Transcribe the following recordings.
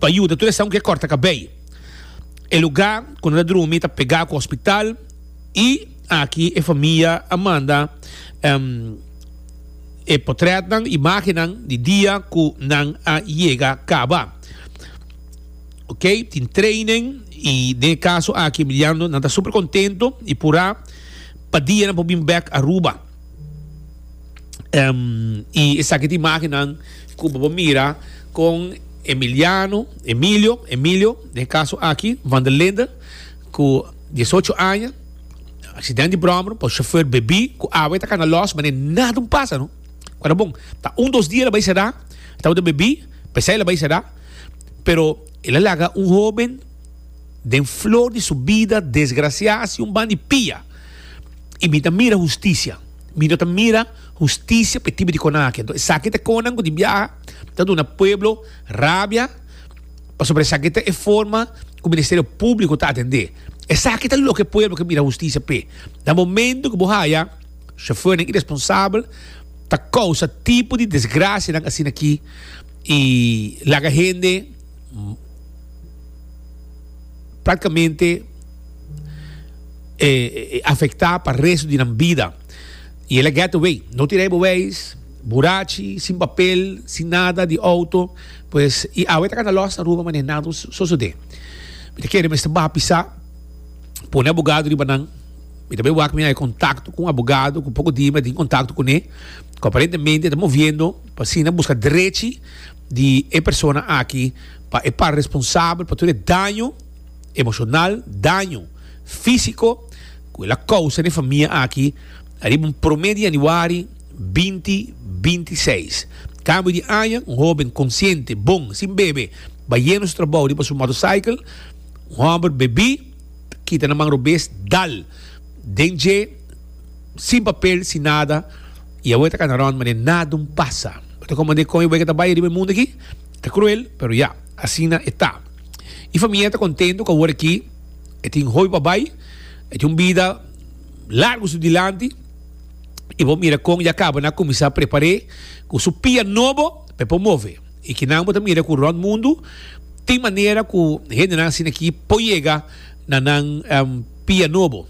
Pa yuda tur esnan ku ke kòrta kabei. E lugá ku nan ta drumi ta pegá ku hospital i aki e famia a manda e potrètnan, imágennan di dia ku nan a yega kaba. Okey, tin training i den e kaso aki Emiliano nan ta super kontentu i purá pa dia nan por bin bèk Aruba. Em, y esaki ta imagen nan cu bo por mira con Emiliano, Emilio, Emilio, den e caso aki, van der Linde, cu diesocho aña, accidente di brommer, por chauffeur bebí, cu awe ta cana los, mane nada un pasa, no. Ora bon, ta un dos dia la bay cerá, tabata bebí, pesey la bay cerá, pero el a laga un hoben den flor di su bida desgraciá haci un ban di pia. y mi ta mira husticia. Mi no ta mira husticia pa e tipo di conan aki. Enton esaki ta e conan cu tin biaha ta duna pueblo rabia pasobra esaki ta e forma cu Ministerio Publico ta atende. Esaki ta loke e pueblo ke mira husticia p'e. Na momento cu bo haya chofernan iresponsabel ta causa tipo di desgracianan asina aki y laga hende. Practicamente afecta pa resto di nan bida. Y el a get away. No tin rei beweis, burachi, sin papel, sin nada di auto. Pues, y awe ta cana los Aruba, mane nada no sosode. Mi ta kere mester baha pisa, pone abogado riba nan. Mi ta bay wak, mi haya contacto cu un abogado cu poco dia mi a tin contacto cune, cu aparentemente ta moviendo pa asina busca drechi. di e persona aki pa e par responsabel pa tur e daño emocional, daño fisico cu el a causa n'e famia aki ariba un prome di januari binti binti seis. Cambio di aña, un hoben consciente, bon, sin bebe, bayendo su trabou riba su motorcycle, un homber bebí, kita na man robes, dal den dje, Sin papel, sin nada. Y awor e ta cana rond mane nada un pasa. Bo ta comprende con e wega ta bay riba e mundo aki? Ta cruel, pero ya, asina e ta. E famia ta contento cu awor aki e tin hopi pa bay, e tin un bida largo su dilanti. Y bo mira con ya caba na cuminsa prepare cu su pia nobo pa e por move. Y kinan bo ta mira cu rond mundo tin manera cu hendenan asina aki por yega na nan pia nobo.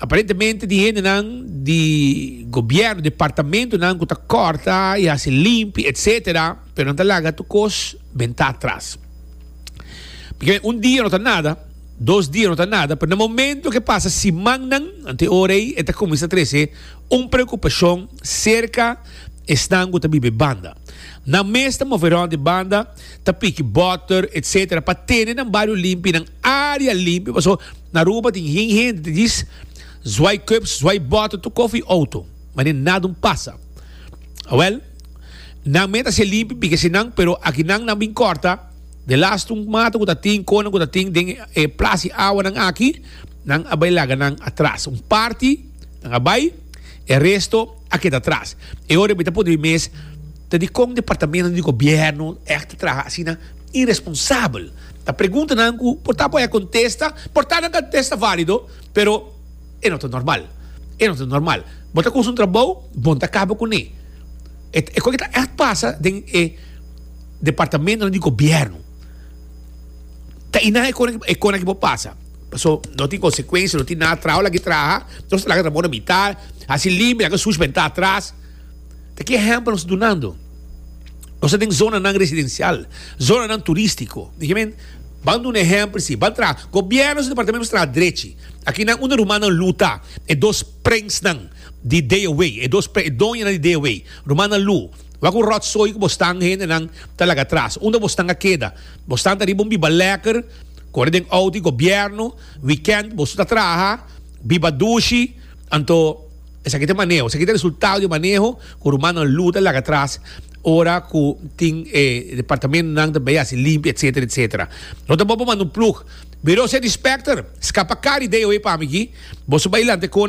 Aparentemente tin hendenan di gobierno, departamentonan cu ta corta y haci limpi, etcetera, pero nan ta laga tur cos benta atras. Porque un dia no ta nada, dos dia no ta nada, pero na momento ke pasa simannan, anto e ora ei e ta cuminsa trece un preocupacion cerca esnan cu ta biba e banda. Nan mes ta move rond e banda. ta piki boter etc pa tene nan bario limpi nan area limpi paso na Aruba tin hen hende ta dis zwai cups zwai boter tur kof y auto mane nada un pasa awel nan me ta haci limpi piki asi nan pero aki nan nan bin corta de last un mata cu ta tin conan cu ta tin den e plas y awanan aki nan a bay laga nan atras un parti nan a bay e resto a keda atras e ora bita pudi mes Ta dikon departamentu di gobièrnu èk ta traha asina iresponsabel? Ta preguntanan ku por ta por e kontesta, por ta nan kontesta válido, pero e no ta normal. E no ta normal. Bo ta kusa un trabou, bon ta kaba kuné. E ta e kon e ta èk pasa den e departamentunan di gobièrnu. Ta i nan e kon e kon aki por pasa. Paso no tin konsekuensia, no tin nada. Trao lag'e traha, nos ta laga trabou na mitá, hasi limpi, laga sushi pa entá atras. Ta ki ehempel nos ta dunando. Nos ta den zonanan residencial, zonanan turistico. Nifiamen, ban duna ehempel si, ban traha. Gobierno su departamento mester traha drechi. Aki nan unda rumannan lu ta, e dos prensnan di Day Away, e dos e doñanan di Day Away. Rumannan lu, wak ku ròtsoi ku bostan hendenan ta laga atras. Unda bostan a keda? Bostan ta riba un biba lèker, kore den outo di gobierno. Wikènt boso ta traha, biba dushi, anto. Esaki ta maneho, esaki ta resultado di e maneho cu rumannan Lou ta laga atras ora cu tin e departamentonan ta bay haci limpia etcetera etcetera. Lo ta bon pa manda un plug. Biro Cedispechter, scapa cara di DOE pa mi aki. Boso bay lanteconan.